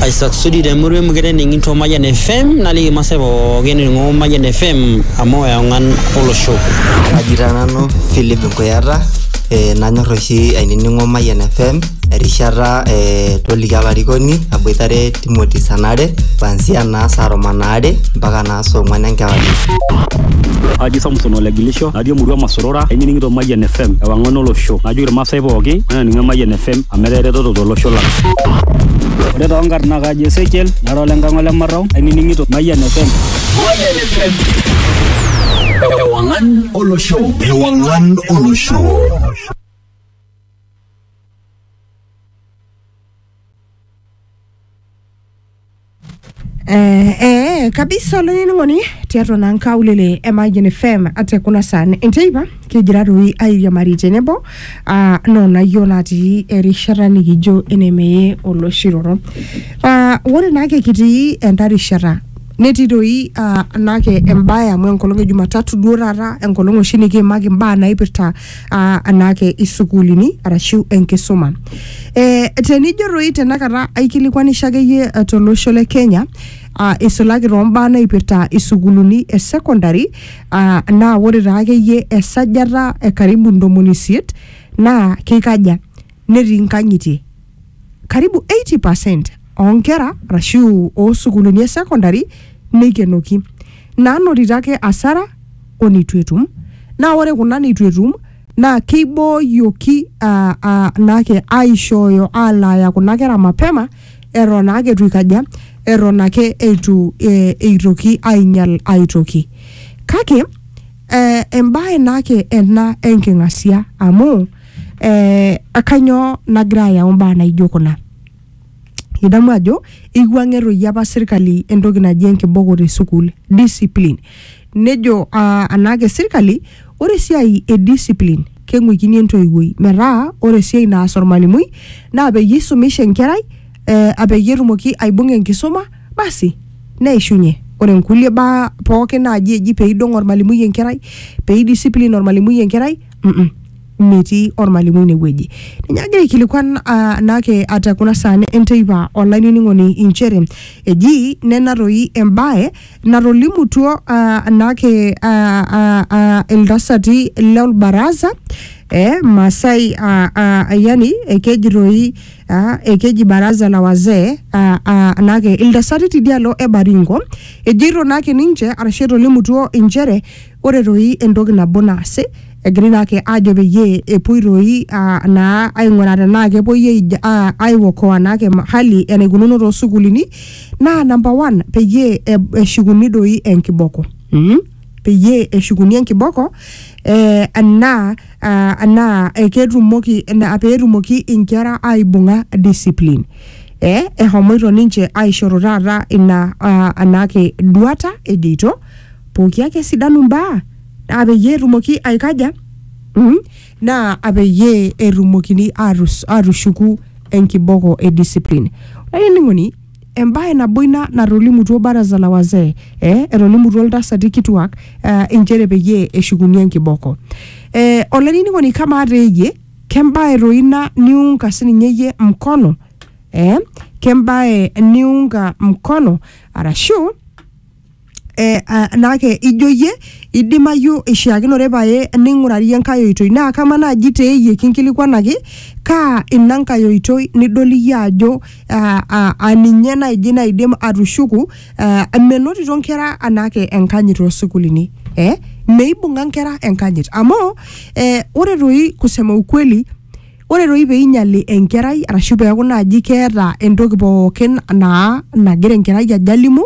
aisasudi temurua emukete ning'into Mayian FM naliki masaa pookin ning'o Mayian FM amu eong'an olosho. Kaji taa nanu Philip Nkuyata eh, nanyor oshi ainining'o Mayian FM erishata eh, toliki olarikoni aboitare Timothy Sanare kuanzia naa saa tomon aare mpaka naa saa ong'wan enkewarie. Aji Samson Olegilisho, natii emurua Masorora, ainining'ito Mayian FM, ewang'an olosho. Najoki irmaasai pooki, enaning'o Mayian FM amu etaa eretoto tolosho lang. Ore too nkarn naa kaji Ezekiel, nara ole Nkang' ole Marrau, ainining'ito Mayian FM. Mayian FM. Ewang'an olosho. Ewang'an olosho. Eh, eh, kabisa olainining'oni tiatua naa nkaulele e Mayian FM ate kuna saan enteipa kigira toi airiamari tenebo ah, noonayio natii erishata nikijo enemeye oloshiroro ah, ore naake kitii enda rishata netii toi ah, naake embae amu enkolong e Jumatatu duo taata enkolong oshi nikiimaki imbaa naipirta aa anaake isukuulini arashu enkisuma. E, tenijo toi tenakata aikilikuanisho akeyie eh, tolosho le Kenya aa isulaki toombaa naipirta isukuulini e secondary aa naa ore taa akeyie esajata e karibu ntomoni isiet naa keikaja netii nkang'itie. karibu 80% oonkera arashu oosukuulini e secondary neikenoki, naanotito ake asara o neitu etum. Naa ore kuna neitu etum naa keibooyioki aa, aa, naake aaishooyo aalaaya kuna kera mapema eton naake eitu eikaja, eton ake eitu ee, eitoki ainyal ae toki. Kake ee, embae naake ena enking'asia amu. eh, akanyoo nagira ayau mbaa naijo kuna idamu ajo eiwuang'ie toi apa sirkali entoki naji enkiboko te sukuul discipline nejo uh, anaake sirkali ore esiai e discipline keng'uikini entoiwuoi metaa ore esiai naas ormalimui naa peyie isumisha enkerai eh, apeyie etumoki aibung'a enkisuma basi neishunye ore nkulie baa pookin naaji eji peidong ormalimui enkerai peidiscipline ormalimui enkerai mm -mm, metii ormalimui inewueji ninye agira aikilikuan ah, naake ata kuna saa ne- enteipa olainining'oni inchere eji nena toi embae natolimutuo ah, naake ah, ah, ah, iltasati lolbaraza eh, Masai ah, ah, yani ekeji toi ah, ekeji baraza la wazee ah, ah, naake iltasati tidialo e Baringo ejeito naake ninche arashu etolimutuo inchere Ore toi entoki nabo naasi, egirai naake ajo peyie epuoi toi naa aing'uraa tenaa kepuoi aiokoa naake hali enaikununo too sukuulini naa namba one peyie eshukuni doi enkiboko. Peyie eshukuni enkiboko enaa enaa ketumoki peetumoki inkera aibung'a discipline. Eshomoito ninche aishoru taata ina naake duata ejoito pooki ake esidanu mbaa naa peyie etumoki aikaja mm, naa apeyie etumokini atus- atushuku enkiboko e discipline olainining'oni embae nabo ina natolimutuo baraza la wazee eh, etolimutuo iltasati kituak eh, inchere peyie eshukuni enkiboko eh, olainining'oni kamaa teeyie kembae toi ina niunga sininye iyie mkono eh, kembae niunga mkono arashu eh, ah, naake ijo iyie idimayu ishiakinore pae ning'urarie enkae oitoi naa kama naaji te iyie kinkilikwanaki kaa ina nkae oitoi nidol iyie ajo ah, ah, ah, ninye naaji naidim atushuku ah, menotito nkera anaake enkanyit toosukulini eh? meibung'a nkera enkanyit amu eh, ore toi kusema ukweli Ore doi pee einyali enkerai arashu peeku naaji keeta entoki pookin naa nagira enkerai ajo alimu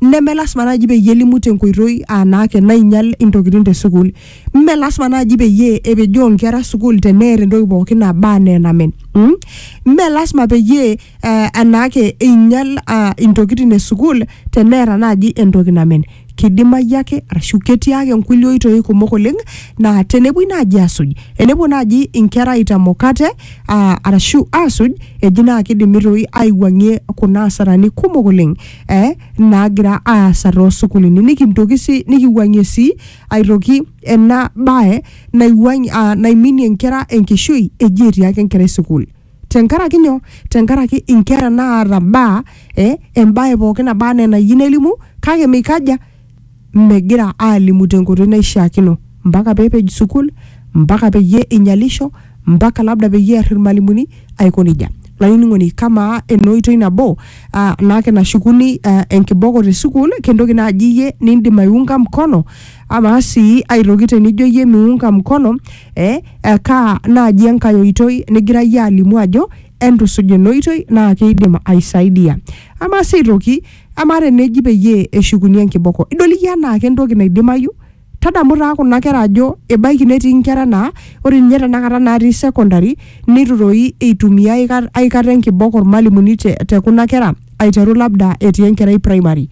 neme lasima naaji peyie elimu tenkoitoi aa naa ake nainyal intokitin te sukuul. Mme lasima naaji peyie epejoo inkera sukuul teneeta entoki pookin naba enaa enamen. mm. Mme lasima peyie aa anaake einyal aa intokitin e sukuul teneeta naaji entoki namen. kidimayu ake arashu ketii ake nkulie oitoi kumok oleng naa tenepuoi naaji asuj enepuo naaji inkera aitamok ate aa, arashu asuj eji naa kidimi toi aiwuang'ie kuna asarani kumok oleng eh, naagira aasa toosukulini nikintoki sii nikiwuang'ie sii aitoki ena bae naiwuang'ie, ah, naiminie inkera enkishui eji etii ake enkerai sukuul tenkaraki nyoo tenkaraki inkera naata baa eh, embae pookin naba anaa enayieu nelimu kake meikaja megira aalimu tenkoitoi naishiakino mpaka peepej sukul mpaka peyie einyalisho mpaka labda peyie ear irmalimuni aiko nejia lainining'oni kamaa ena oitoi nabo uh, naake nashukuni uh, enkiboko te sukul kentoki naaji iyie nindim aiunga mkono amaa sii aitoki tenijo iyie miunga mkono eh, eh, kaa naaji enkae oitoi nigirayie alimu ajo entusuj ina oitoi naa keidim aisaidia ama sii aitoki ama teneji peyie eshukuni enkiboko idol iyie anaa kentoki naidimayu tadamu taa kuna kera ajo ebaiki netii inkera naa ore ninye tenakata natii secondary neitu toi eitumia aika- aikata enkiboko ormalimuni te, te kuna kera aiteru labda etii enkerai primary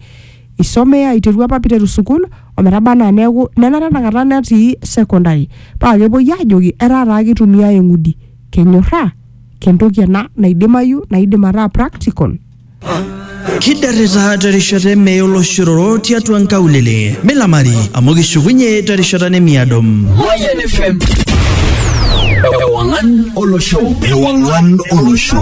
isomea aiteru apa piteru sukuul ometaba anaa neeku nenare enakata netii secondary paa kepuoi aajoki etaa taa kitumiae eng'udi kenyorraa kentoki ena naidimayu naidim ataa practical Kidarita terishata emee oloshororo tiatua nkaulele. Milamari amu kishukunye terishata nemiado. Mayan FM. Ewangan Olosho. Ewangan Olosho.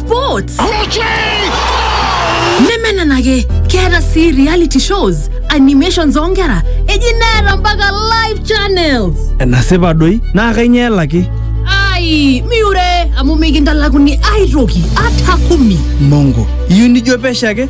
sports nemenenake keeta sii reality shows animations oonkera eji neeta mpaka live channels enasipa doi naa kainyoo elaki ai miure amu mikintalakuni aitoki ata kumi mongo iyieu nijo pesho ake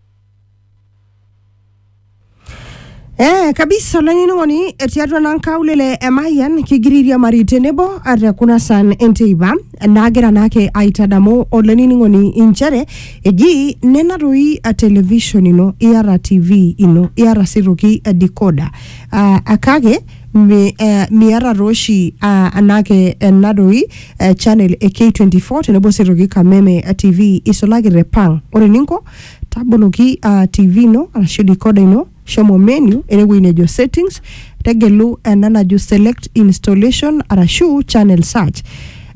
Eh, kabisa olainining'oni tiatua naa nkaulele e Mayian kigira airiamari tenebo ate kuna san enteipa naagira naake aitadamu olainining'oni inchere eji nena toi a television ino iyata TV ino iyata sii toki a decoder uh, kake Mi, eh, miata tooshi ah, anake ena doi eh, channel e K24 tenebo sii aitoki Kameme eh, TV isulaki te Pang. Ore eninko taboloki ah, TV ino arashu decoder ino shomo menu enewueji nejo settings tegelu ena najo select installation arashu channel search.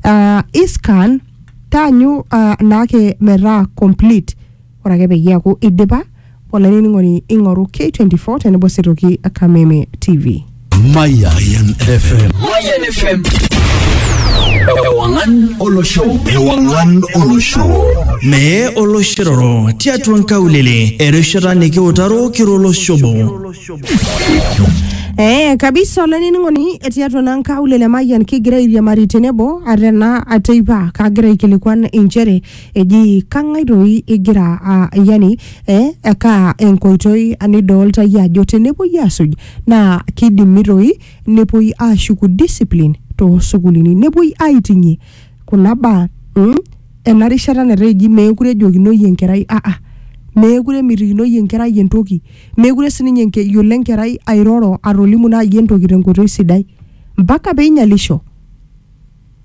Ah, iscan taanyu ah, naake metaa complete Ore ake peyie eaku eidipa, olainining'oni ing'oru K24 tenebo sii aitoki Kameme TV. Mayan FM. Mayan FM. Ewangan olosho. Ewangan olosho. Mee oloshiroro tiatua nkaulele erishata nikiutaro kiro olosho obo. Eh, kabisa olainining'oni tiatua naa nkaulele Mayian kigira airiamari tenebo ate naa ateipa kagira aikilikuan inchere eji kang'ae doi igira a- yani eh, ekaa enkoitoi nidoolta iyie ajo tenepuoi aasuj naa kidimi doi nepuoi aashuku discipline toosukulini nepuoi aiting'ie kuna baa mm, ena rishata netaa eji meekure ejokinoi enkerai aa meekure emitikinoi enkerai entoki meekure sininye enke- eyiolo enkerai airoro atolimu naaji entoki tenkoitoi sidai mpaka peinyalisho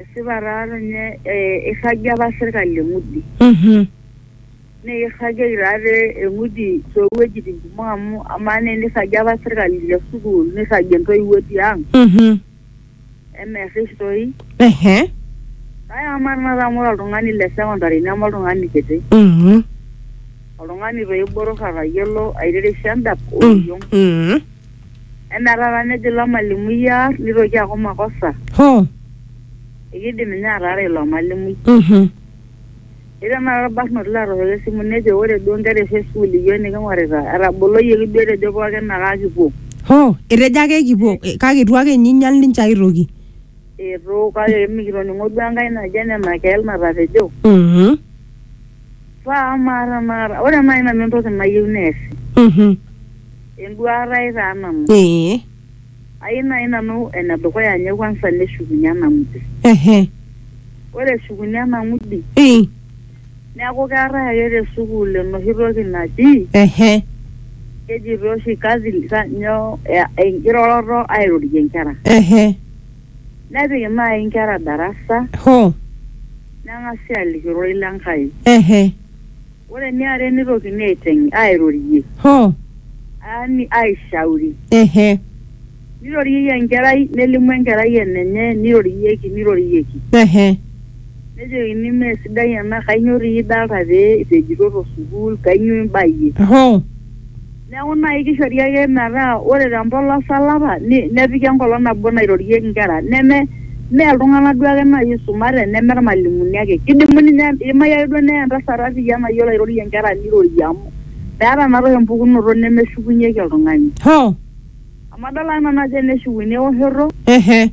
esipa taa ninye eh, eirragie apa sirkali eng'udi Mhm. naa eirragieki taa te eng'udi toowuejitin kumok amu amaa naa enirragie apa sirkali te sukuul nirragie intoiwuo tiang Mhm. emerrish toi Ehe. kake amaa tenakata amu ore oltung'ani le secondary neme oltung'ani kiti Mhm. oltung'ani toi botor atayiolo aiterisha endap oriong Mhm. Enaa taata nejo ilo malimui aar nitoki aaku makosa. Hoo. Ekidim ninye ataara ilo malimui. Mhm. Etii tenakata olbarnoti latooshoki esimu nejo ore duo inkera oshi e sukuul iyiook niking'orita etaboloyioki duo etejo pooki ake akipuo. Hoo. Etejo ake ekipuo kake eitu ake ninye einyal ninche ae toki. Eitu kake mikitoning'o duo enkae naji ene Nakel natapejo. Mhm. Paa amaa tenakata ore naai nanu entoki nayieu neesi. Mhm. Enduaata ai taa nanu. Ee. Ayieu naaji nanu ene dukuya ninye kwanza neshukunye ena ng'udi. Ehe. Ore eshukunye ena ng'udi. Ee. Neeku keetae ake te sukuul enoshi toki naji. Ehe. Kejitoi oshi kazi nyoo enkiroroto airorie nkera. Ehe. Nepik naaji nkera darasa. Hoo. Neng'asi aaliki ororei le Nkai. Ehe. Ore eniare neitokini aiteng airorie Hoo. yaani aishauri. Ehe. Neiroriei enkerai nelimu enkerai enenye neirorieki neirorieki. Ehe. Nejokini mee sidai ena kainyioo doi idolita pee ipejito to sukuul kainyioo imbayie. Hoo. Neeku naaji kishori ake metaa ore te mpolos olapa nepiki enkolong nabo nairorieki nkera neme mee iltung'anak duo ake naaji oisumate neme irmalimuni ake. Kidimu ninye idimayu ake duo neye entasat arriyia nayiolo airorie nkera nirorie amu meeta naa toi empukunoto nemeshukunyieki oltung'ani. Hoo! Amu adol ake nanu ajo eneshukunyie ewoshoto. Ehe.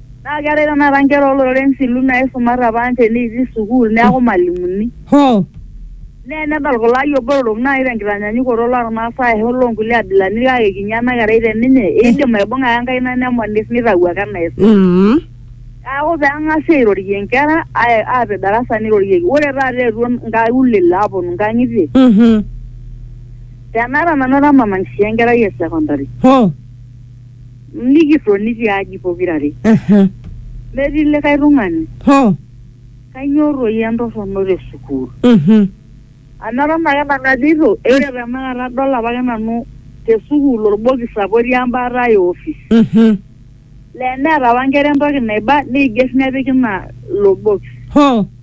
Naa keetae tenakata nkera ooloreren silu naaisumate apa ninche neitii sukuul neaku malimuni. Hoo. Naa enedol kulo ayiok botorok naaji tenkitanyaanyukoto loo Ilmaasai ashu loo nkulie abilaritin kake kinyi ena kerai te ninye eidim aibung'a ake enkaina nemonis neitau ake enaisum. Umm. Neaku pee eng'asi airorie inkera aapik darasa neirorieki. Ore taata eetuo inkaulele aaponu inkang'itie. Uhum. Tenaata nanu ara mama nkishui enkerai e sekondari. Hoo. Nikitoni tiaji pokirare. Aha. Metii likae tung'ani. Hoo. Kainyoo toi entorrono te sukuul? Mhm. Amu eton ake nanu ajito egira tenakata adol apake nanu te sukuul orbokis apa otii embaata e office. Mhm. Laa eneeta apa nkera entoki naiba neiger nepiki ina ilo bokis. Hoo.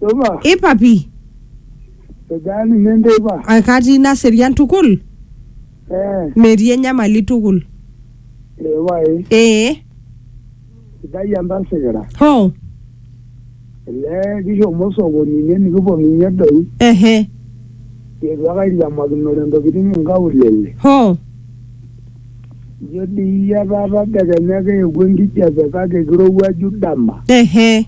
Supa, ipapi edaa ninye enteipa? akatii naserian tukul Eh, metii enyamali tukul ee pae, ee sidai entasikira. ho Elee kishomo sokoni ine nikiponunye doi. ehe Eitu ake airiamakinore ntokitin inkaulele. ho Ijo dii iyie etaa tadekenya keewuo enkijape kake kirowuaju dama. ehe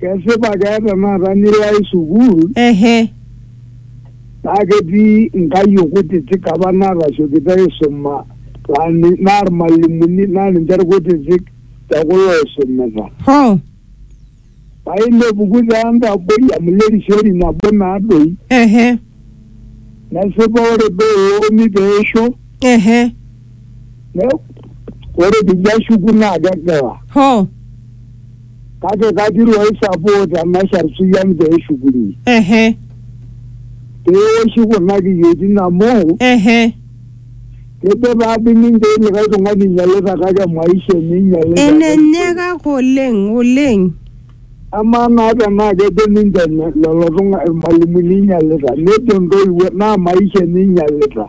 Kesipa keeta naata nilo ai sukuul ehe naa ketii nkayiok kutitik apa naatasiokito aisuma laa ni- naa irmalimuni naa ninche irkutitik te kulo oisumita. hoo Paa inepuku taa entaboi amu ile risioti nabo naa doi ehe nesipa ore duo eoruni pee eisho ehe ne- ore pijo ashuku naa kegila. hoo kake kagira ai support emashar suyian pee eshukuni ehe pee eoshi kuna kiyioitin amu ehe kejo taa dii ninche likae tung'ani inyialita kake maisha enye inyialita enenye kake oleng oleng amaa naa tenaa kejo ninche ne- lelo tung'a irmalimuni inyialita nejo ntoiwuo naa maisha enye inyialita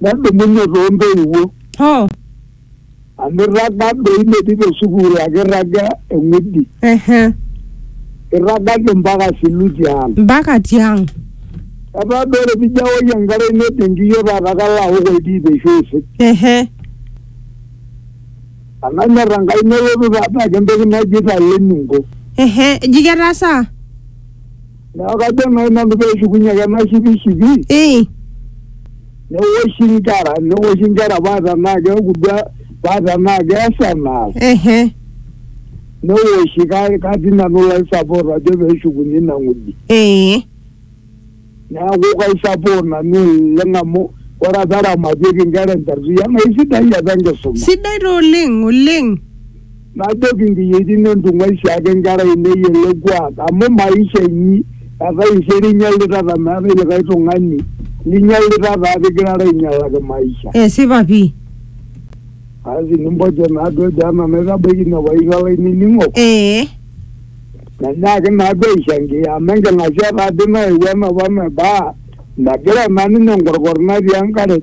nedumunye too ntoiwuo oh amirraga doi metii te sukuul ake irraga eng'udi ehe irragaki mpaka siluti ang mpaka tiang etaa doi ore pijo aoki enkare ino te nkiyio taata kalo aok oltiip eishu aisik ehe ananyor enkai nelotu taata ake entoki naji italenunko ehe eji ketasaa Neeku kajo nai nanu peeshukunye ake ena shipishipi Eh, newoshi inkera newoshi inkera paa tenaa keeku duo paa tenaa keesa enaas ehe, newoshi ka- katii nanu laisapot ajo peeshukunye ina ng'udi. eh, Neeku kaisapot nanu oleng amu ore apa eramatieki inkera enterria naa isidai apa enkisuma. sidai taa oleng oleng. najoki nkiyietin entung'uaisho ake nkera ainei ele kuak amu maisha inyi etaisere inyalitata meetae likae tung'ani linyalitata ate igirara ainyalaki maisha Esipa pii. asi nimpojo naaduo ejo anaa naitabaiki ine paisho olainining'o Ee. nenyaaki naaduo aishangia amu enking'asia taadi nayewuo enapa naibaa megira naa ninye enkorkor natii enkare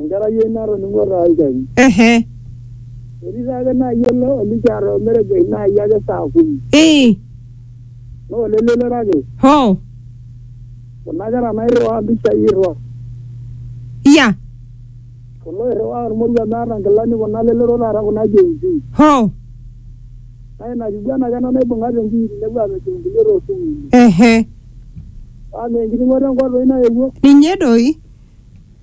Enkerai ai natoning'o taa olchani. Ehe. Etii taake naai ele olikiata omeregesh naai ake saa kumi. Ii. Naa olelelero ake. Hoo. Kuna kera nairriwaa mpishai irrwa. Iya. Kulo oirriwaa olmoruo meeta nkilani kuna lelero taata kuna Gen Z. Hoo. Naa ina kiguana ake ena naibung'a te Nkiiri nepuo aapejoo nkulie too sukuulini. Ehe. Paa mee enkiting'oto e nkop doi nayewuo? Ninye doi.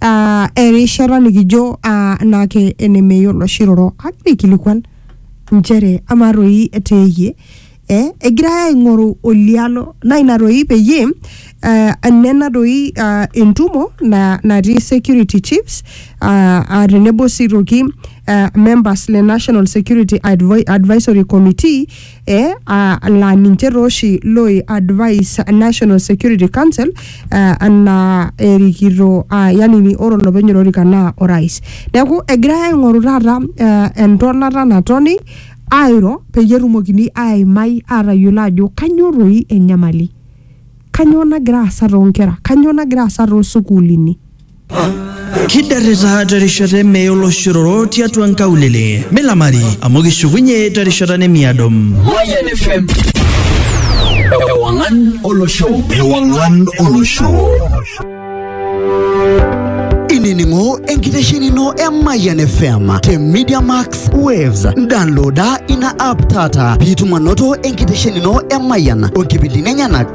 ah, erishata nikijo ah, naake enemeyiolo oshi roro agira aikilikuan nchere amaa toi teeyie eh, egirai aing'oru olialo naa ina toi peyie eh, nena toi ah, entumo na, natii security chiefs ah, ah, tenebo sii toki ah, members le national security Advi- advisory committee eh, ah, laa ninche taa oshi loi advise National Security Council eh, anaa erikito ah, yani ni- ore olopeny olorika naa orais. Neeku egirai aing'oru taata eh, entonata natoni airo peyie etumokini aimai aatayiolo ajo kanyoo toi enyamali. Kanyoo nagira aasa toonkera? Kanyoo nagira aasa toosukuulini? kiderrita terishata emei oloshororo tiatua nkaulele milamari amu kishukunye terishata nemiado Mayan FM. Ewangan Olosho. Ewangan Olosho. inining'o enkitesheni ino e Mayan FM te Media Max Waves. Downloada ina app taata piitum anoto enkitesheni ino e Mayan onkipindini enyenak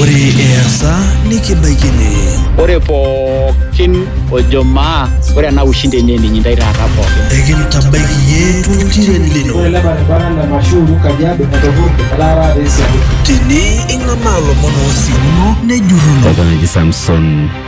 Ore easa nikibaiki ene. Ore pookin ojo maa ore ena ushindi enye ening intae taata pookin. Ekintabaiki iyie toltiren lino. Ore ele baribara le Mashuru Kajiado etopurte etaa taata esiaku. Tene ing'amaa lomon oosimuno nejurruno. Oltung'ani oji Samson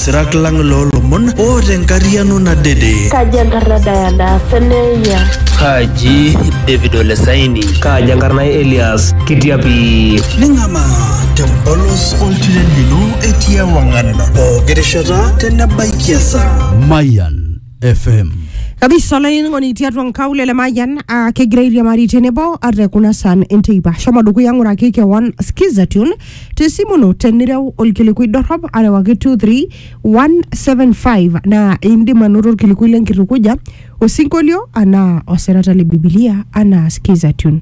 sirak lang loolomon o tenkariano nadede. Kaji enkarna Diana Seneia? Kaji David Olesaini? Kaji enkarna Elias Kitiapi? Ning'amaa tempolos oltiren lino etii ewang'an pooki rishata tenebaikia esaa. Mayan FM. kabisa olainining'oni tiatua nkaulele mayian uh, kegira airiamari tenebo ate kuna san enteipa shomo dukuya ng'uraki kewon skiza tune tesimu ino tenireu olkilikui dorrop arewaki 23175 naa indim anoto olkilikui lenkitukuja osinkolio anaa osirata le bibilia anaa skiza tune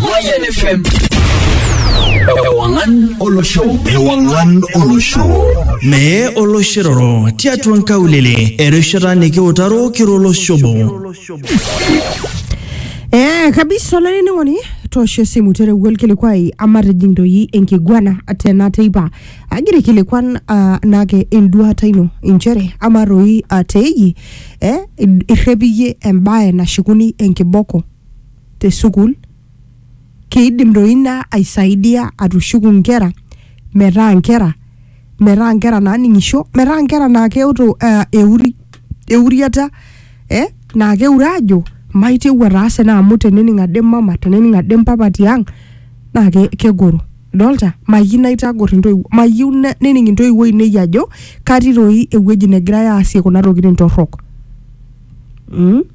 Moyen FM. Ewangan Olosho. Ewangan Olosho. Mee oloshiroro tiatua nkaulele erishata nikiutaro kiro oloshobo. Eh, kabisa olainining'oni toosho esimu terewua olkilikuai amatijing doi enkiguana tena teipa agira aikilikuan ah, naake enduata ino inchere ama toi ah, teeji eh, irrepiyie embae nashukuni enkiboko te sukuul, keidim doi ina aisaidia atushuku nkera metaa nkera metaa nkera naaning'isho, metaa nkera naa keoto eh, euri, euriata eh, naa keure aajo maitieu ataasa ena amu tenening ade mama tenening ade mpapa tiang naa ke- kegoro. Idolta? Mayieu naitagor intoiwuo, mayieu ne- nening intoiwuo ainei ajo katii doi ewueji negirai aasie kuna tokitin torrok mm.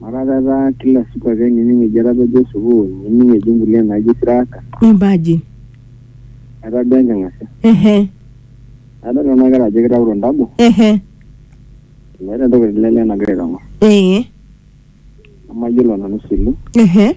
Mataa etaa kila siku ake nining eji etapejo sukuul, nining eji nkulie naaji siraka. Imagine. Etaa duo enking'asia. Ehe. Adol nena kera ajo kitauto ntabo. Ehe. Meeta entoki etii lele nagira aitong'or. Ee. Nemayiolo nanu silu. Ehe.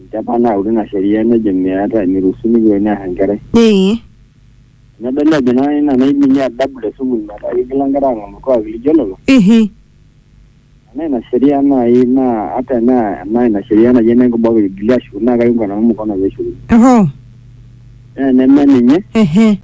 Enchata nautu ina sheria nejo meetae, meiruhusuni pee ear enkerai. Ee. Nedoli ajo naa ina naiminie adabu te sukuul metaa keigila nkera aang'amu olkuak lijo lelo. Ehe. Enaa ina sheria naai naa ata enaa enaa ina sheria naji ene nkiboo pee eigili aashukuni naa kaiunga nanu mkono pee eshukuni. Ohoo. Naa eneme ninye. Ehe.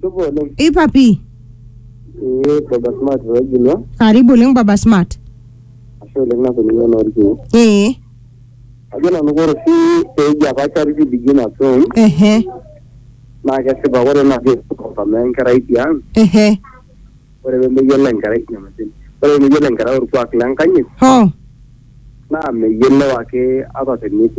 Tupo oleng. ipa pii Ee baba smart Regilwa. karibu oleng baba smart Ashe oleng nakuninye olorkiu. ee Ajo nanu kore oshi peji apa charity begin at home ehe naa kesipa kore naji amaa enkerai tiang ehe ore pemeyiolo enkerai nyamalitin. Ore pemeyiolo enkerai orkuak lenkanyit ho naa meyiolou ake ata tenetii